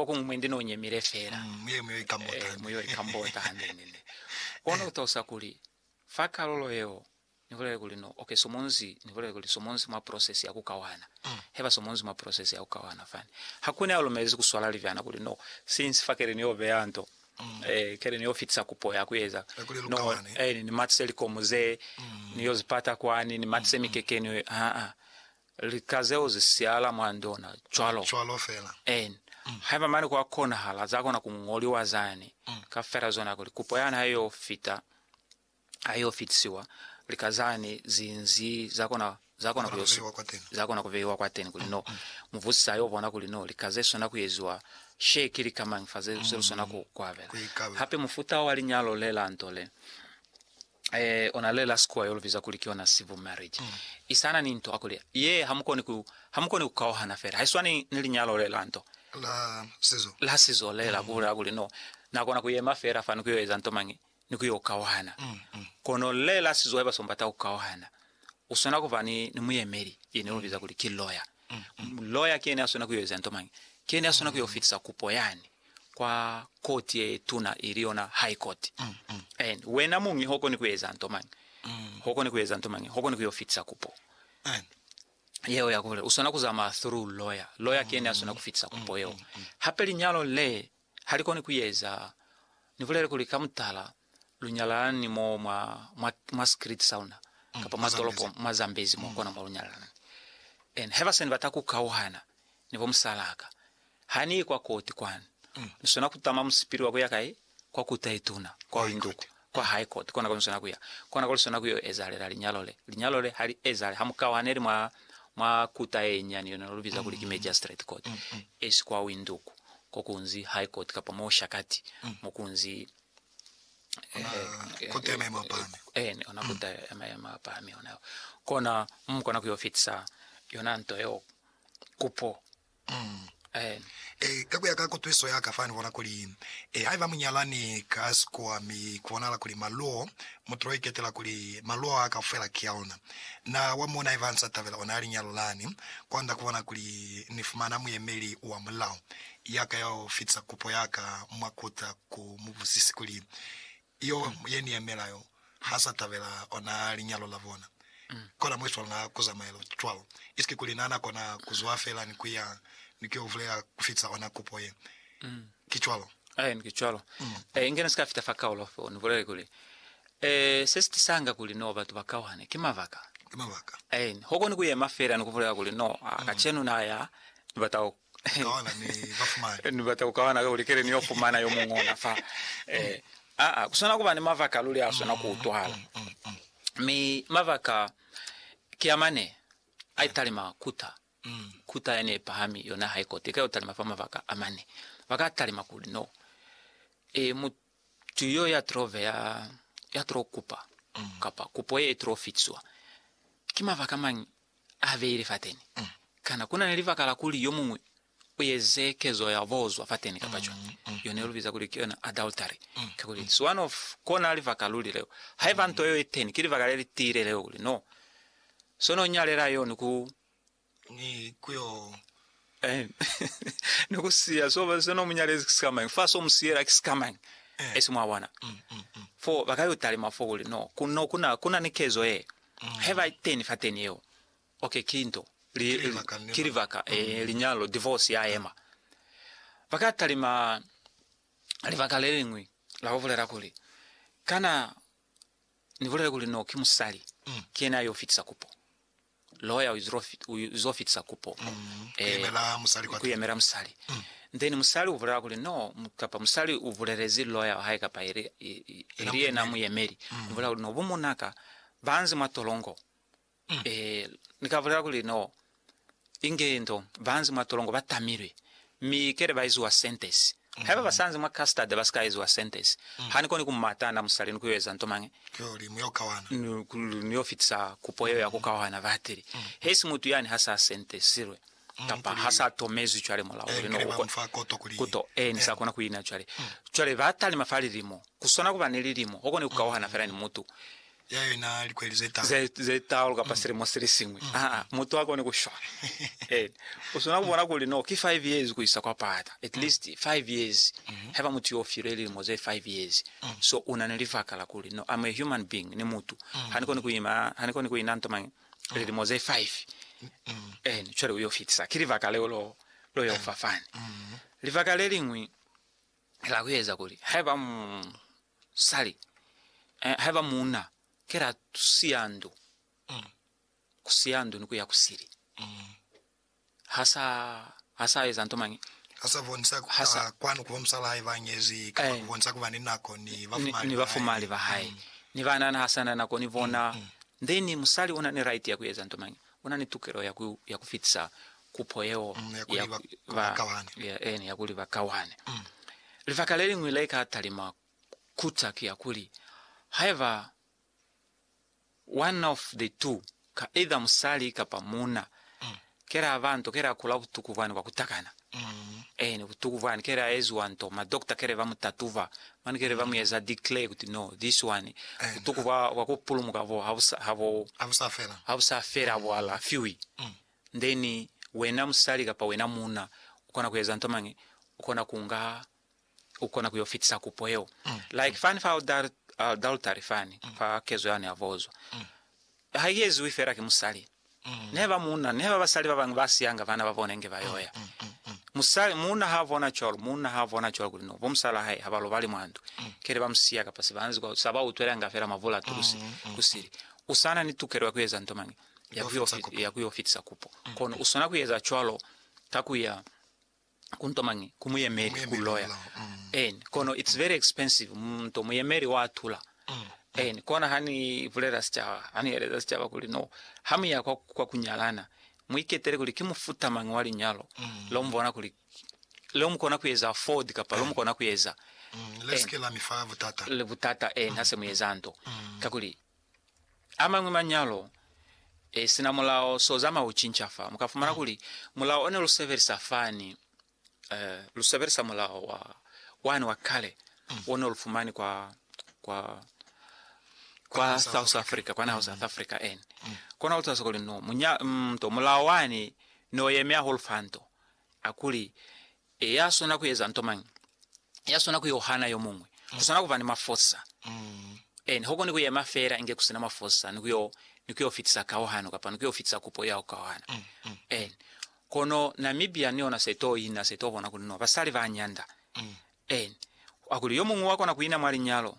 Kokuñwi mwendi no nyemile fela. Muye mu yo ikambota. Mu yo ikambota hande ni ne. Kono ku talusa kuli, fa kalulo yeo, ni bulele kuli no oke somonzi, ni bulele kuli somonzi mwa process ya ku kawana. He ba somonzi mwa process ya ku kawana fani. Ha ku ne a lumelezi ku swala libyana kuli no, since fa keli ni yo beya nto, keli ni yo fitisa kupo ya ku eza, no, ni matise likomu ze, ni yo zi pata kwani, ni matise mikekeni, haa. Lika zeo zi siala mwa ndona cwalo. Cwalo fela. En. Haiba mane kwa konahala, za kona ku ñoliwa zani, ka fela zona kuli kupo yani ha yo fita, ha yo fitisiwa, lika zani zi nzi za kona, za kona ku yo su, za kona ku beiwa kwateni, kuli no. Mubusisi a yo bona kuli no, lika ze swana ku eziwa she ki lika mañi fa ze, ze lu swana ku, ku abela. Hape mufuta wa linyalo le la nto le, Eh, ona lela sikuwa yo lubiza kuli ki yona civil marriage. Mm. Isana ni nto akuli ye hamukoni ku hamukoni kukauhana fela. Haiswani ni linyalo le la nto. La sizo. La sizo le la mm. kubula kuli no. Na kona kuyema fela fani kuyo eza nto mangi ni kuyo kauhana. Mm, mm. Kono le la sizo haiba sombata kukauhana. Usona kuba ni ni muyemeli yene mm. lubiza kuli ki lawyer. Mm, mm. Lawyer kene asona kuyo eza nto mangi. Kene asona mm. kuyo fitisa kupo yani. kwa koti ye tuna ili yona High Court. And wena muñi hokoni kueza nto mañi? Hokoni kueza nto mañi? Hokoni kuyo fitisa kupo yeo ya kubolela. Uswana kuzamaya through lawyer. Lawyer ki yene aswana kufitisa kupo yeo. Hape linyalo le halikoni kueza, nibulele kuli ka mutala, lu nyalana ni mo mwa, mwa, mwa secret sauna, Mm, kapa mwa mwa tolopo, Zambezi. mwa Zambezi mo, Mm. kona mo lu nyalana ni. And haiba sani bata ku kauhana ni bo musalaka, ha ni ye kwa koti kwanu, Mm. ni swana ku tama musipili wa kuya kai? Kwa Kota ye Tuna, kwa High linduku, Court. kwa High Court, kona kwa ni swana kuya. Kona kwa lu swana kuyo ezahalela linyalo le. Linyalo le ha li ezahale ha mu kauhaneli mwa, mwa Kota ye Nyani, yona no lu biza kuli ki Magistrate Court, Mm, mm. esi kwa winduku, ko kunzi High Court, kapa mo shakati, mo kunzi Kota ya maemo a pahami. Eh, ni ona kota ya maemo a pahami ona yo. Kona mu kona ku yo fitisa yona nto yo kupo. Eh. Eh, ka kuya ka kutwiso ya ka fani bona kuli eh haiba munyalani ka sikuwa mi kubonahala kuli maluo mutulo iketela kuli maluo a kaufela ki a ona. Na wa mona haiba ansa tabela ona ya linyalo lani kwanda kubona kuli ni fumana muyemeli wa mulao. yaka ya u fitisa kupo yaka mwa kuta ku mu buzisi kuli, Yo ye ni yemela yo ha sa tabela ona linyalo la bona? Kona mwesu wa luna ku zamaela cwalo, isike kuli na na kona ku zwa fela ni ku ya ni ku yo vulela ku fitisa ona kupo ye. Ki cwalo? Aen, ki cwalo. E, inge ni si ka fita fa kaulo fo ni bulele kuli, E, se si tisanga kuli no batu ba kauhane, ki mabaka. Ki mabaka. Aen, ho koni ku yema fela ni ku bulela kuli, No, a, kacenu na ya, ni bata ku Ni bata ku kawana ka kuli kele ni yo fumana yo muñwi ona fa. Eh, aa, ku swana kuba ni mabaka a luli a swana ku utwahala. Mi mabaka ki a mane, a italima kuta, kuta yani ye pahami, yona ha i kote, i ka yo talima fa mabaka a mane. Ba ka talima kuli, No, eh, Tuyo ya trove ya, ya tro kupa, kapa kupo ye tro fitiswa, ki mabaka mañi a beile fateni? Kana kuna ni libaka la kuli yo muñwi u eze kezo ya bozwa fateni kapa cwani? Yo ne lu biza kuli ki yona adultery. Kakuli, it's one of kona libaka luli leo. Haiba nto yeo iteni, ki libaka lelitiile leo kuli no, so no nyalela yo ni ku ni ku yo Eh, ni ku siya so ba se no munyalezi ki sikamañi fa so musiyela ki sikamañi eh. esi mwa bona mm, mm, mm. fo ba ka yo talima fo kuli no ku no kuna kuna ni kezo ye mm. he ba teni fa teni yeo okay kinto li, ki libaka eh, mm. eh, linyalo divorce ya ema ba ka talima libaka le lingwi la go bolela kuli kana ni bolela kuli no ki musali mm. ke yena yo fitisa kupo Lawyer uzo fitisa kupo ku yemela musali then musali ubulela kuli no kapa musali ubulelezi lawyer wahae kapa ili yena muyemeli ubulela kuli no bumunaka banzi mwa tolongo nika bulela kuli no inge ndo banzi mwa tolongo batamilwe mi kele baiziwa sentence Haiba basanzi mwa custard basikaezwa sentence, hanikoni kumata na musali ni kuyoeza nto mañi, niyo fitisa kupo yeo ya kukaohana batili, hesi mutu yani hasa sentesilwe kapa hasa tomezwi cwale mulao uli no ukwe kuto e, ni sa kona kuina cwale. Cwale batalima fa lilimo, kuswana kuba ni lilimo, okoni kukaohana fela ni mutu ya yona likweli ze talu. Ze, ze talu kapa mm. silimo sili singwi. Mm. Ah, ah, mutu akone kushwala. eh, usona kubona kuli no, ki 5 years kuisa kwa pata. At mm. least 5 years. Mm -hmm. Heba mutu yo file lilimo ze 5 years. Mm. So una ne livaka la kuli no, I'm a human being, ni mutu. Mm. Hani koni kuima, hani koni kuina ntoma mm. lilimo ze 5. Mm. Eh, chwele uyo fitisa. Ki livaka leo lo, lo yo fafani. Mm. Livaka le lingwi, Kela kueza kuli haiba musali, eh, haiba muuna, kela tusiya ndu, mm. kusiya ndu ni kuya kusili. Mm. Hasa, hasa eza nto mangi. Hasa bonisa hasa kwanu kuba musala haiba ngezi, kapa eh. kubonisa kuba ni nako ni bafumali. Ni bafumali ba hai. Mm. Ni banana hasa na nako ni bona. Mm. mm. Then musali una ni right ya kueza nto mangi. U na ni tukelo ya ku, ya ku fitisa kupo yeo Mm, ya kuli ya, ba- ku- ba ba, kawane. ya, eni, ya kuli ba kawane. Mm. Libaka le liñwi le ka talima kuta ki ya kuli, haiba one of the two, ka either musali kapa muuna, Mm. ke la ba nto, ke la kula butuku bwani bwa ku takana, Eeni, butuku bwani kele a eziwa nto, ma doctor kele ba mu tatuba, mane kele ba mu eza declare kuti no, this one, butuku bwa, bwa ku pulumuka bo ha bu sa, ha bo, Ha bu sa fela. ha bu sa fela, ha bu alafiwi. Then, wena musali kapa wena muuna, u kona ku eza nto mañi? U kona ku nga u kona ku yo fitisa kupo yeo. Like fani fa adultery fani, fa kezo yane ya vozwa. Ha i eziwi fela ki musali. Nehe ba muuna, nehe ba basali ba bañwi ba siyanga bana ba bona inge ba yo ya. Musali, muuna ha bona cwalo, muuna ha bona cwalo kuli no, bo musala hae ha ba lobali mwa ndu, kele ba mu siya kapa se ba nzi kwa, sa ba utwelanga fela mavula a tulusi ku sili. U sa na ni tukelo ya ku eza nto mañi? Ya ku yo fitisa kupo. Kono u swana ku eza cwalo ka ku ya ku nto mañi ku muyemeli ku loya en kono it's very expensive mu nto muyemeli wa tula en kona ha ni bulela sicaba ha ni yeleza sicaba kuli no ha muya kwa, kwa kunyalana muiketele kuli ki mufuta mañi wa linyalo lo mubona kuli lo mukona kuyeza afford kapa lo mukona kuyeza Mm, le sike la mi fa butata. Le butata eh, ha se mu yeza nto. Mm. Kakuli amañwi manyalo e sina mulao so zama u cinca fa muka fumana kuli mulao one lu sebelisa fani eh, lu sebelisa mulao wa wani wa kale mm. one lu fumani kwa kwa kwa South Africa kwa naho mm. South Africa en mm. kona ulitsa sokoli no munya mm, to mulao wani no yemya hol fanto akuli E, ya swana ku eza nto mañi? Ya swana ku yo hana yo muñwi. Ku swana ku ba ni mafosa. Ee, ni ho koni ku yema fela inge ku si na mafosa, ni ku yo, ni ku yo fitisa kauhano, kapa ni ku yo fitisa kupo ya ku kauhana. Ee. Kono Namibia ni yona se to ina, se to bona kuli no basali ba nyanda. Ee. Hakuli yo muñwi wa kona ku ina mwa linyalo,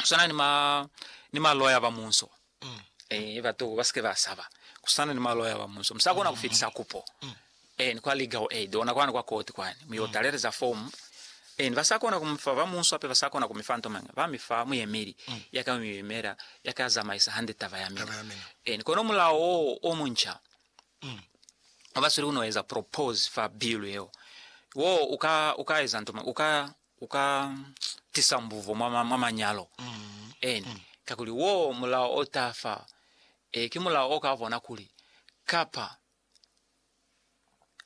kusana ni ma ni maloya ba munso mm. eh batu ba sike ba saba kusana ni maloya ba munso msa kona ku fitisa kupo mm. eh ni kwa legal aid ona kwana kwa court kwani mu yo mm. taleleza form eh ba sa kona kumfa ba munso ape ba sa kona kumifa nto manga ba mifa mu yemeli mm. ya ka mu yemela ya ka zamaisa hande taba ya mina eh ni kono mulao o muncha mm. ba sulu no eza propose fa bill yeo wo uka uka eza nto manga uka u ka tisa mbuvo mwa, mwa, mwa manyalo eni, kakuli wo mulao o ta fa. E, ki mulao o ka bona kuli, kapa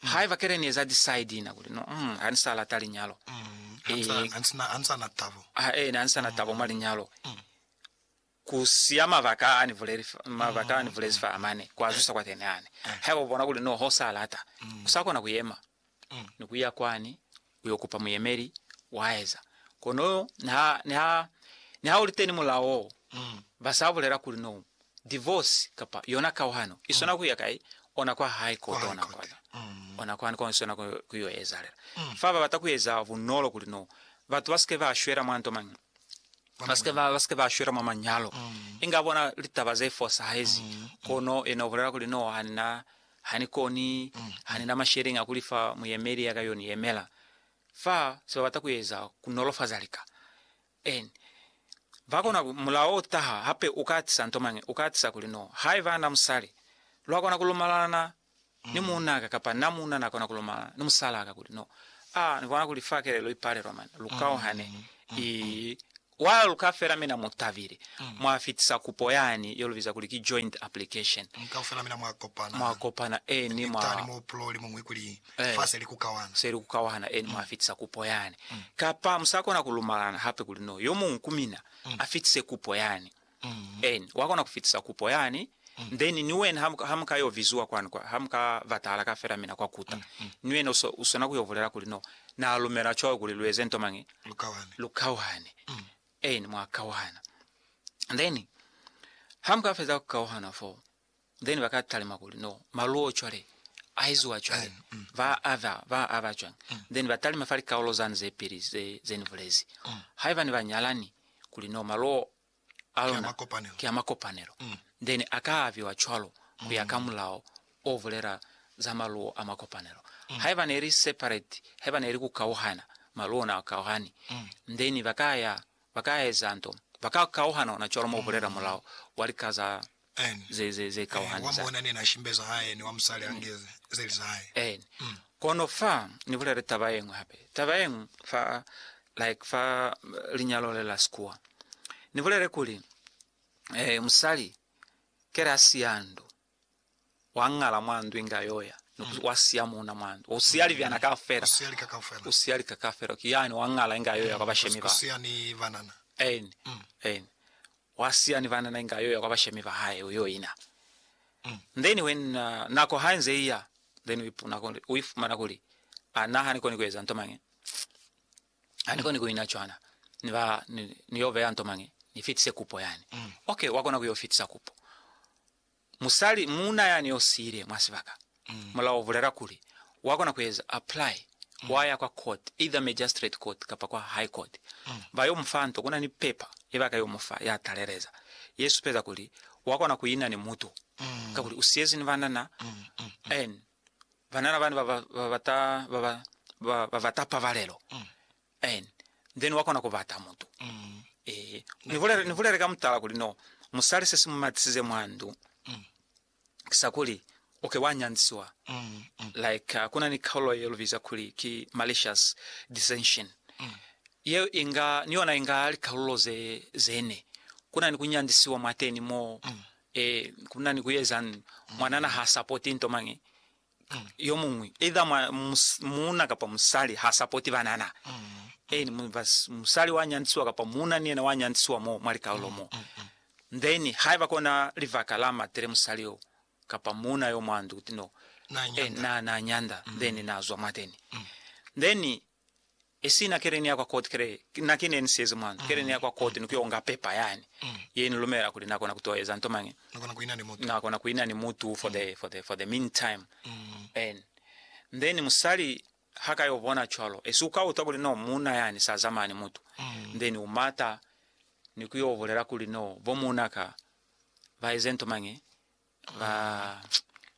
haiba kele ni eza decide na kuli, no, mm, ha ni sa lata linyalo, Ha ni sa- ha ni sa- ha ni sa na tabo. ha, e, ha ni sa na tabo mwa linyalo, Ku siya mabaka a ni buleli, mabaka a ni bulezi fa mane, kwa zwisa kwa Keneani. Haiba u bona kuli noho sa lata, u sa kona ku yema ni ku ya kwani u yo kupa muyemeli, wa eza. Kono niha, niha, niha u li teni mulao wo, ba sa bulela kuli no divorce kapa yona kauhano i swana ku ya kai, ona kwa hae ko tona kona, ona kwani ko i swana ku, ku yo ezalela. Fa ba bata ku eza bunolo kuli no batu ba si ke ba shwela mwa nto mañi. ba si ke ba shwela mwa manyalo, inga bona litaba ze fosahezi. Kono yena ubulela kuli, No, hanina, hanikoni, hanina masheleñi a kulifa muyemeli ya ka yo ni yemela. Fa se babata kueza kunolofaza lika. En bakona ku, mulao utaha hape, uka atisa nto mañi, uka atisa kuli, No, haiba na musali, lwakona kulumalalana ni muunaka kapa na muuna na kona ku lomala ni musalaka kuli, No, a ni bona kuli fa kelelo i palelwa mane, lu kauhane, i wa luka fela mina mu tabile, mwa fitisa kupo yani ye lu biza kuli ki joint application, mwa kopana, eni mwa, eh, se li ku kauhana, eni mwa fitisa kupo yani. Kapa mu sa kona ku lumalana hape kuli, No, yo muñwi ku mina a fitise kupo yani. Eeni, wa kona ku fitisa kupo yani, then ni wena ha, ha muka yo viziwa kwani, kwa, ha muka batahala ka fela mina kwa kuta, ni wena uso, usona ku yo bulela kuli, No, Na lumela cwawe kuli lu eze nto mañi? Lu kawane. Lu kawane. Eeni, mwa kauhana. Then, ha muka feza ku kauhana foo, Then ba ka talima kuli no maluo cwale a eziwa cwale mm, mm, ba mm. ava ba ava cwang mm. then ba talima fa likaulo zani ze pili ze ze ni bulezi mm. haiba ni ba nyalani kuli no maluo a lona ke a makopanelo mm. then a ka aviwa cwalo ku ya ka mm. mulao o bulela za maluo a makopanelo mm. haiba ne li separate haiba ne li ku kauhana maluo na kauhani mm. then ba ka ya ba ka eza nto ba ka kauhana ona cwalo mo bulela mm. mulao wa likaza ze kauhani za. En. Kono fa ni bulele taba yeñwi hape, taba yeñwi fa, like fa linyalo le la sikuwa. Ni bulele kuli, eh, musali kele a siya ndu, wa ngala mwa ndu inge a yoya, ni ku, wa siya muuna mwa ndu, u siya libyana kaufela, u siya lika kaufela, ki yani wa ngala inge a yoya kwa bashemi ba. En. En. Wa siya ni banana inge ayo ya kwa bashemi ba hae uyo ina. Then when uh, nako ha inze iya, then u ipuna kuli, u ifumana kuli, a na ha ni koni ku eza nto mangi. Ha ni koni ku ina cwana. Ni ba, ni, ni yo beya nto mangi. Ni fitise kupo yani. Okay, wa kona ku yo fitisa kupo. Musali, muuna yani yo siile mwa sibaka, mulao u bulela kuli wa kona ku eza apply, wa ya kwa court, either magistrate court kapa kwa high court, ba yo mu fa nto. Kuna ni paper ye ba ka yo mu fa ya taleleza, ye supeza kuli wa kona ku ina ni mutu, kakuli u siyezi ni banana, and banana bani ba ba bata, ba ba, ba ba bata pabalelo. And then wa kona ku bata mutu. Ehe. Ni bulele, ni bulele ka mutala kuli no musali se si mu matisize mwa ndu ki sa kuli u ke wa nyanzisiwa. Like uh, ku na ni kaulo ye lu biza kuli ki malicious dissension. Yeo i nga, ni yona i nga likaulo ze, ze ne. Ku na ni ku nyanzisiwa mwateni mo, eh, ku na ni ku ezang, mwanana ha supporti nto mañi, yomuñwi, either mwa, mus, muuna kapa musali, ha sapoti banana. Eeni, mu, bas, musali wa nyantisiwa kapa muuna ni yena wa nyantisiwa mo mwa likaulo mo. Then, haiba kona libaka la matele musali yo, kapa muuna yo mwa ndu, kuti no, Na eh, nyanda. na, na nyanda, then na zwa mwateni. Then, e sina keleni ya kwa koti kele na ki ne ni siyezi mwanto keleni ya kwa koti ni ku yo nga pepa yani ye ni lumela kuli na kona ku to eza nto mañi na kona ku ina ni mutu for the for the for the meantime and then musali ha ka yo bona cwalo esi u ka utwa kuli no muuna yani sa zamaya ni mutu then u mata ni ku yo bulela kuli no bo muuna ka ba eze nto mañi ba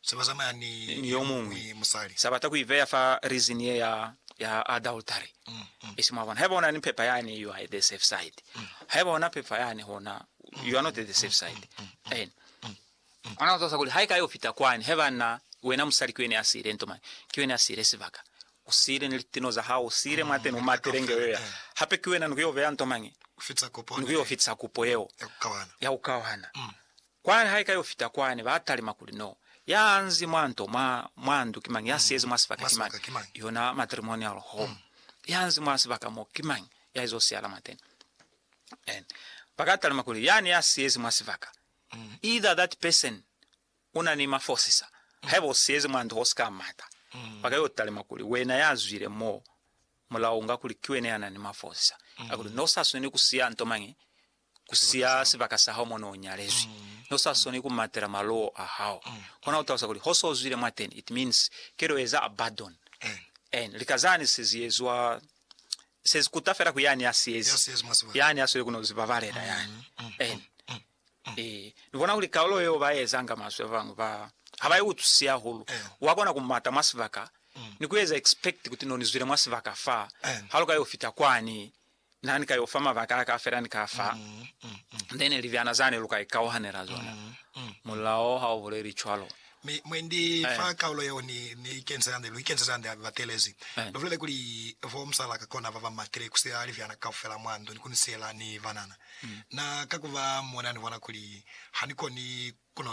se ba zamaya ni yomuñwi musali. Sa bata ku ibeya fa reason ye ya, ya adultery. I si, mwabona. Haiba una ni pepa yani, you are at the safe side. Haiba una pepa yani, hona, you are not at the safe side. Amen. Ona utosa kuli haika yo fita kwani, haiba na wena musali ki wene ya siile nto mane, ki wene ya siile sibaka. U siile ni litino za hao, u siile mwateni, u matile nge yo ya. Hape ki wena ni ku yo beya nto mane, ni ku yo fitisa kupo yeo ya ku kawana. Kwani ha ika yo fita kwani, ba talima kuli, No, ya nzi mwa nto mwa, mwa ndu ki mañi? Ya siyezi mwa sibaka ki mañi? Yona matrimonial home. Ya nzi mwa sibaka mo ki mañi? Ya izo siyala mwateni. And ba ka talima kuli, Yani ya siyezi mwa sibaka. Either that person u na ni mafosisa. Haiba u siyezi mwa ndu ha u si ka mata. Ba ka yo talima kuli, Wena ya zwile mo, mulao unga kuli ki wena ya na ni mafosisa. A kuli, Ne u sa swaneli ku siya nto mañi Ku siya sibaka sa hao mo ne u nyalezwi, ne u sa soni ku matela maluwo a hao, kona ku talusa kuli ho so zwile mwateni, it means ke to eza abadon. And lika zani se zi ezwa, se zi kuta fela ku yani ya si ezi, yani a sweli ku no zi babalela yani. And ee, ni bona kuli kalulo yeo ba ezanga maswe ba bañwi ba ha ba i utwisi hahulu. Wa kona ku mata mwa sibaka ni ku eza expect kuti no ni zwile mwa sibaka fa, ha lu ka yo fita kwani Na ni ka yo fa mabaka a ka fela ni ka fa, then libyana zani lu ka ikauhanela zona. Mulao ha u buleli cwalo. Mi mwendi fa kaulo yeo ni, ni ikenzela hande, lu ikenzeza hande hape batelezi. Lu bulele kuli, Bo musala ka kona baba matile ku siya libyana kaufela mwa ndu ni ku ni siyela ni banana. Na, kakuba, mona ni bona kuli ha ni koni ku no